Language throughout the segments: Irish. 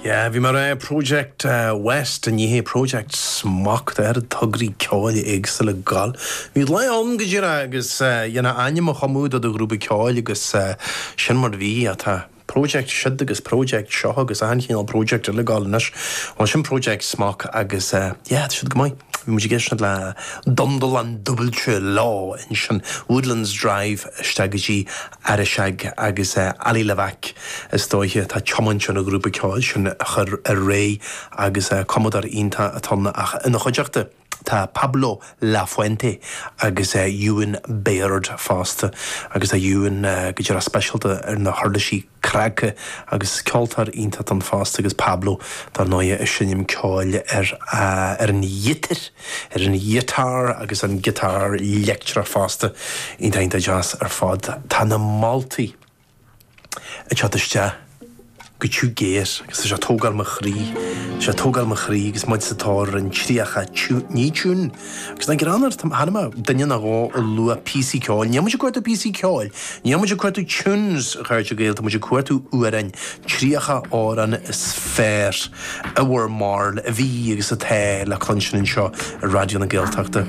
Yeah, bhí mé ag rá Project West in áit Project Smok, tá oiread tograí ceoil éagsúla ag gabháil. Bhí lá ann go díreach agus dhéanfá ainm a chumadh do do ghrúpa ceoil agus sin mar bhí, ach tá Project siúd agus Project seo agus achan chineál Project eile ag gabháil anois. Bhuel sin Project Smok agus yeah, tá siad go maith. Bhí muid ag éisteacht le Dundalán dúbailte lá ansin, Woodlands Drive isteach go dtí. Arisaig agus Ali Levack, is dóiche, atá ag tiomáint an ghrúpa ceoil sin a chur ar ré agus cumadóir iontach atá ann ach ina chuideachta tá Pablo Lafuente agus Ewan Baird fosta agus tá Ewan go díreach speisialta ar na huirlisí cnagtha agus ceoltóir iontach atá ann fosta agus Pablo dar ndóighe ag seinm ceoil ar an ghiotár. ar an ghiotár agus an giotár leictreach fosta, iontach deas ar fad. Tá na moltaí ag teacht isteach go tiubh géar agus tá sé ag tógáil mo chroí, tá sé ag tógáil mo chroí agus muid sa tóir ar an tríocha tiún, ní tiún, agus ná gearán ort, chonaic mé duine nó dhó ag lua píosaí ceoil, níl muid ag cuartú píosaí ceoil, níl muid ag cuartú tunes a chairde Gael, tá muid ag cuartú amhráin Tríocha amhrán is fearr i bhur mbarúil a bhí agus atá le cluinstin anseo ar Raidió na Gaeltachta.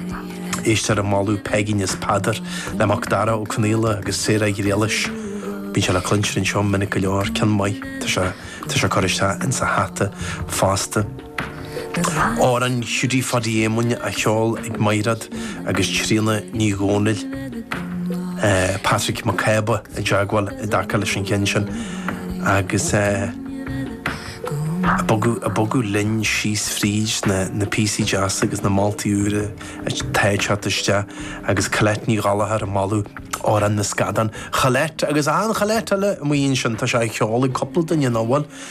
Esther ag moladh Peigín is Peadar le Mac Dara Ó Conaola agus Sarah Ghriallais. Bíonn sé le cluinstin anseo minic go leor, ceann maith tá sé curtha isteach insa hata fosta. Amhrán Hiúdaí Phadaí Éamoinn á cheol ag Maighréad agus Tríona Ní Dhomhnaill. Patrick Mac Cába i dteagmháil i dtaca leis an cheann sin agus muid ag bogadh linn síos fríd na píosaí deasa agus na moltaí úra atá ag teacht isteach agus Colette Ní Ghallchóir ag moladh Amhrán na Scadán. Colette agus achan Cholette eile amuigh ansin, tá sé á cheol ag cúpla duine nach bhfuil?